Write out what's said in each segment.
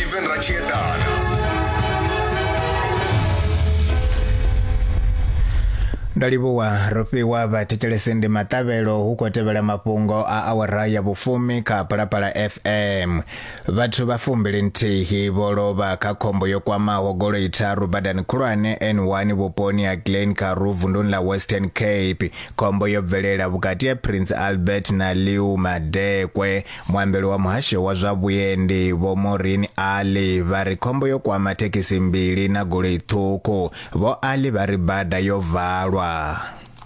Steven Rachiedana. ndo livhuwa ro fhiwa vhathetshelesi ndi maṱavhelo hu khou tevhela mafhungo a awara ya vhufumi kha phalaphala fm vhathu vha fumbili nthihi vho lovha kha khombo yo kwamaho goloi tharu badani khulwane n1 vhuponi ha glen karu vunduni ḽa western cape khombo yo bvelela vhukati ha prince albert na liu madekwe Muambeli wa muhasho wa zwa vhuendi Vho Maureen Ali vha ri khombo yo kwama thekhisi mbili na goloi ṱhukhu. Vho Ali vha ri bada yo valwa.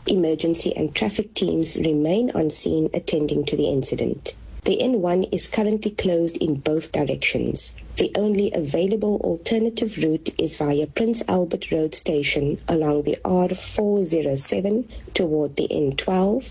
Emergency and traffic teams remain on scene attending to the incident. The N1 is currently closed in both directions. The only available alternative route is via Prince Albert Road Station along the R407 toward the N12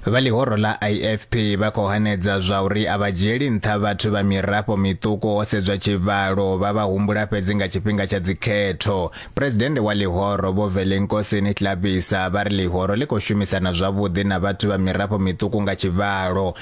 Vha ḽihoro ḽa IFP vha khou hanedza zwa uri a vha dzhieli nṱha vhathu vha mirafho miṱuku ho sedzwa tshivhalo, vha vha humbula fhedzi nga tshifhinga tsha dzikhetho. Phuresidennde wa ḽihoro Vho Velenkosini Hlabisa vha ri ḽihoro ḽi khou shumisana zwavhuḓi na vhathu vha mirafho miṱuku nga tshivhalo,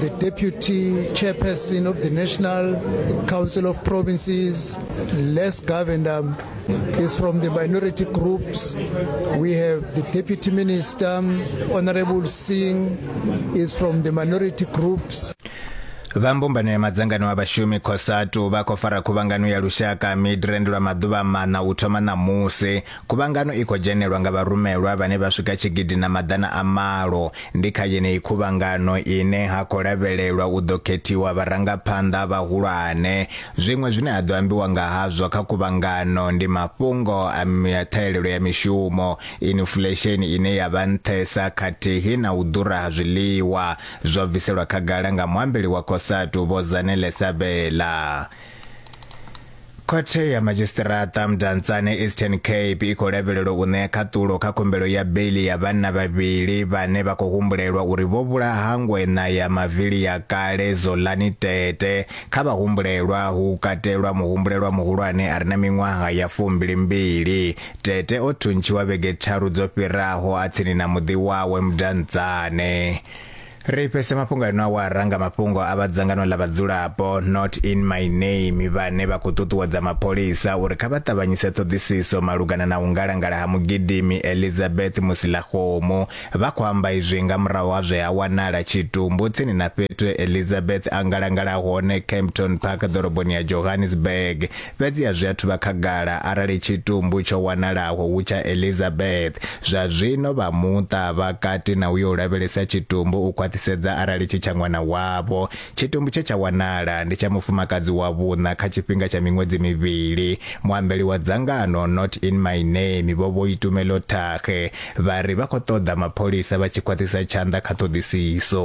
the deputy chairperson of the National Council of Provinces, Les Govender, is from the minority groups. We have the deputy minister, Honorable Singh, is from the minority groups. vha mbumbano ya madzangano a vhashumi cosatu vha khou fara khuvhangano ya lushaka midrand lwa maḓuvha maṋa u thoma ṋamusi Khuvhangano i khou dzhenelwa nga vharumelwa vhane vha swika tshigidi na maḓana a malo. Ndi kha yeneyi khuvhangano ine ha khou lavhelelwa u ḓo khethiwa vharangaphanḓa vhahulwane. Zwiṅwe zwine ha ḓo ambiwa nga hazwo kha khuvhangano ndi mafhungo a ṱhahelelo ya mishumo, inifulesheni ine ya vha nṱhesa khathihi na u ḓura ha zwiḽiwa, zwo bviselwa khagala nga muambeli wa Cosatu, Vho Zanele Sabela. Khothe ya Madzhisiṱiraṱa Mdantsane Eastern Cape i khou lavhelelwa u ṋea khaṱulo kha khumbelo ya beiḽi ya vhanna vhavhili vhane vha khou humbulelwa uri vho vhulaha ngweṋa ya mavili ya kale Zolani Tete. Kha vhahumbulelwa hu katelwa muhumbulelwa muhulwane a re na miṅwaha ya fumbilimbili. Tete o thuntshiwa vhege tharu dzo fhiraho a tsini na muḓi wawe Mdantsane. Ri fhese mafhungo ano awara nga mafhungo a vha dzangano ḽa vhadzulapo Not in my name vhane vha khou ṱuṱuwedza mapholisa uri kha vha ṱavhanyise ṱhoḓisiso malugana na u ngalangala ha mugidimi Elizabeth Musilakgomo. Vha khou amba izwi nga murahu ha zwe ha wanala tshitumbu tsini na fhethu Elizabeth a ngalangala hone Kempton Park ḓoroboni ya Johannesburg Fhedzi a zwi athu vha khagala arali tshitumbu tsho wanalaho hu tsha Elizabeth. Zwa zwino vha muṱa vha kati na u yo u lavhelesa tshitumbu u khwaṱhisedza arali tshi tsha ṅwana wavho. Tshitumbu tshe tsha wanala ndi tsha mufumakadzi wa vhuṋa kha tshifhinga tsha miṅwedzi mivhili. Muambeli wa dzangano Not In My Name Vho Boitumelo Thage vha ri vha khou ṱoḓa mapholisa vha tshi khwaṱhisa tshanḓa kha ṱhoḓisiso.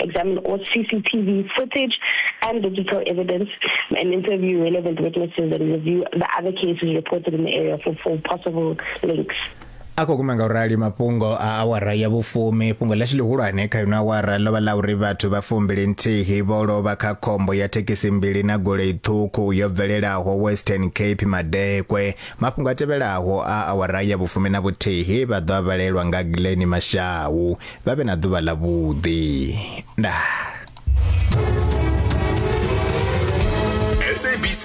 examine all CCTV footage and digital evidence, and interview relevant witnesses and review the other cases reported in the area for, for possible links. a khou guma nga u rali mafhungo a awara ya vhufumi fhungo ḽashu ḽihulwane kha ino awara ḽo vha ḽa uri vhathu vha fumbili nthihi vho lovha kha khombo ya thekhisi mbili na golei ṱhukhu yo bvelelaho western cape madekwe mafhungo a tevhelaho a awara ya vhufumi na vhuthihi vha ḓo a vhalelwa nga glen mashau vha vhe na ḓuvha ḽa vhuḓi ndaa SABC